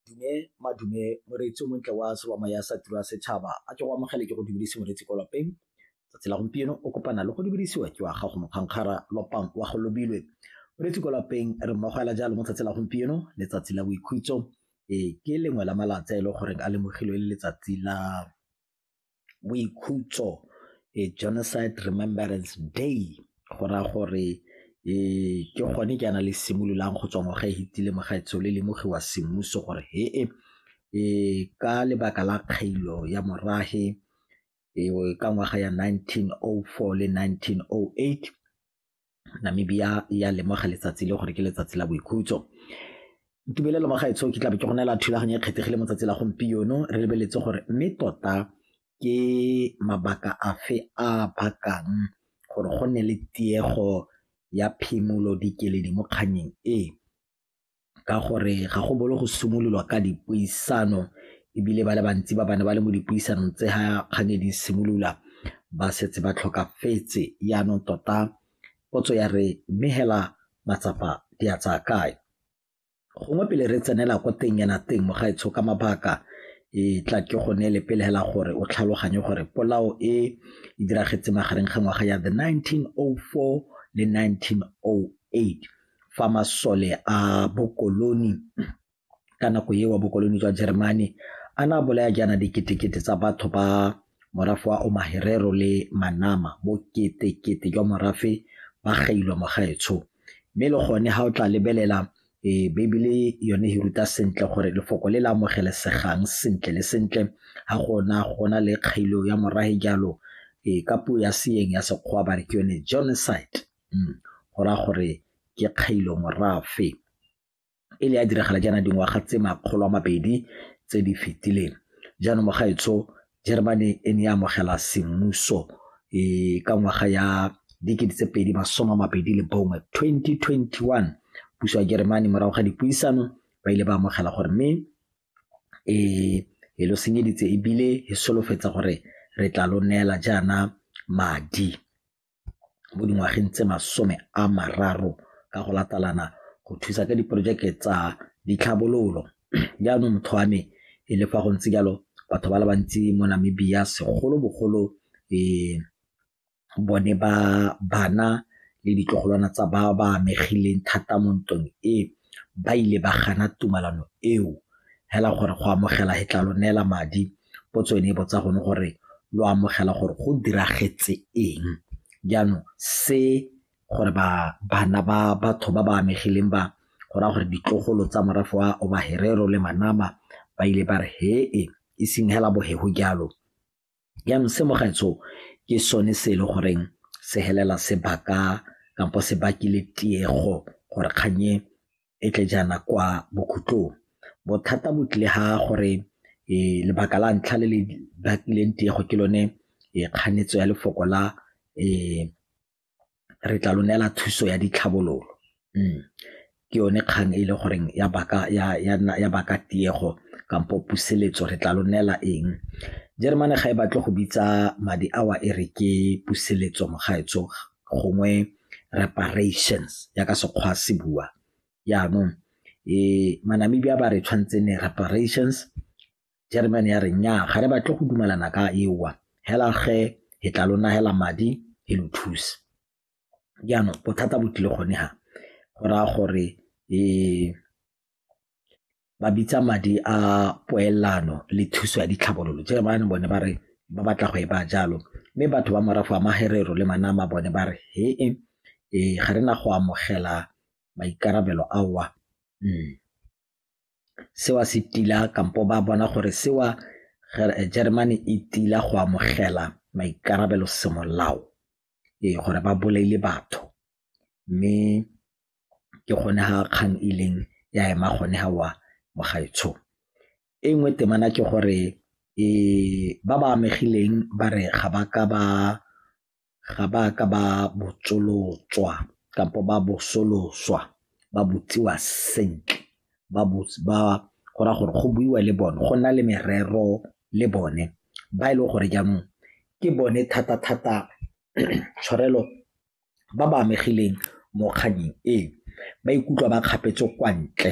Dume madume moreetsi o montle wa tshobama ya sa tiro ya setšhaba a ke go amogele ke go dubedise moreetsi ko lapeng tsatsi la gompieno o kopana le go dubedisiwa ke wa gago mokgankgara lopang wa go lobilwe moreetsi ko lapeng re mmogela jalo mo tsatsi la gompieno letsatsi la boikhutso e ke lengwe la malatsa e le goreng a lemogilwe le letsatsi la boikhutso e Genocide Remembrance Day go raya gore ee ke gone ke yana le simololang go tswa ngwaga e hitile mogaetsho le lemogiwa semmuso gore he e ka lebaka la kgailo ya morahe e ka ngwaga ya 1904 le 1908 Namibia e a lemoga letsatsi le gore ke letsatsi la boikhutso. Tumelelo mo gaetsho ke tlabe ke go neela thulaganyo e kgethegile mo tsatsi la gompieno re lebeletse gore mme tota ke mabaka afe a bakang gore go nne le tiego ya phimolo dikeledi mo kgannyeng e. ka gore ga go bolo go simololwa ka dipuisano ebile ba le bantsi ba bane ba le mo dipuisanong tse ga kgang e di simolola ba setse ba tlhokafetse yaanong tota potso ya re mme hela matsapa di a tsaya kae gongwe pele re tsenela ko teng yana teng mogaetsho ka mabaka e tla ke go neele pele hela gore o tlhaloganye gore polao e e diragetse magareng ga ngwaga ya the 1904 le 1908 fa masole a bokoloni ka nako eo bokoloni jwa Jeremane a na bolaya jaana diketekete tsa batho ba morafe wa Omaherero le Manama boketekete jwa morafe ba gailwa mogaetsho mme le gone ga o tla lebelela e Bibele yone e ruta sentle gore lefoko le le amogelesegang sentle le sentle ga gona gona le kgailo ya morahe jalo e ka puo ya seeng ya sekgwa ba re ke yone genocide go raya gore ke kgailo morafe e le ya diragala jaana dingwaga tse makgolo a mabedi tse di fetileng jaanong mogaetsho Germany e ne e amogela semmuso e ka ngwaga ya dikete tse pedi masome a mabedi le bongwe 2021 puso ya Germany morago ga dipuisano ba ile ba amogela gore mme e e lo senyeditse ebile e solofetsa gore re tla lo neela jaana madi mo dingwageng tse masome a mararo ka go latalana go thusa ka diporojeke tsa ditlhabololo. Jaanong motho wa me e le fa go ntse jalo batho ba le bantsi mo Namibia segolobogolo bone ba bana le ditlogolwana tsa ba ba amegileng thata mo ntweng e, ba ile ba gana tumalano eo fela gore go amogela he tla lo neela madi Potso e ne e botsa gone gore lo amogela gore go diragetse eng jaanong se gore ba bana ba batho ba ba amegileng ba go raya gore ditlogolo tsa morafe wa obaherero le manama ba ile ba re hee e seng hela bohego jalo jaanong se mogaetsho ke sone se e le goreng se helela sebaka kampo se bakile tiego gore kganye e tle jaana kwa bokhutlong bothata bo tlile ha gore lebaka la ntlha le le bakileng tiego ke lone kganetso ya lefoko la re tla lo neela thuso ya ditlhabololo mm. ke yone kgang e le goreng ya baka ya ya ya baka tiego kampo puseletso re tla lo neela eng Jeremane ga e batle go bitsa madi awa e re ke puseletso mogaetso gongwe reparations ya ka sekgwa se bua yaanong e manamibia ba re tshwanetse ne reparations german ya re nya ga re batle go dumelana ka ewa hela ge he tla lona hela madi he lo thuse jaanong bothata bo tlile gone ga go raya gore um ba bitsa madi a poelano le thuso ya ditlhabololo jalo bana bone ba re ba batla go e ba jalo mme batho ba morafe wa magerero le manama bone ba re he e ee, ga re na go amogela maikarabelo aowa mm. sewa se tila kampo ba bona gore sewa eh, Germany e tila go amogela maikarabelo semolao ee gore ba bolaile batho mme ke gone ga kgang e ileng ya ema gone ga wa mogaetsho. E nngwe temana ke gore ba ba amegileng ba re ga ba ka ba ga ba ka ba botsolotswa kampo ba bosoloswa ba botsiwa sentle ba go raya gore go buiwa le bone go nna le merero le bone ba e leng gore jaanong ke bone thata-thata tshwarelo ba ba amegileng mo kgannyeng e ba ikutlwa ba kgapetswe kwa ntle.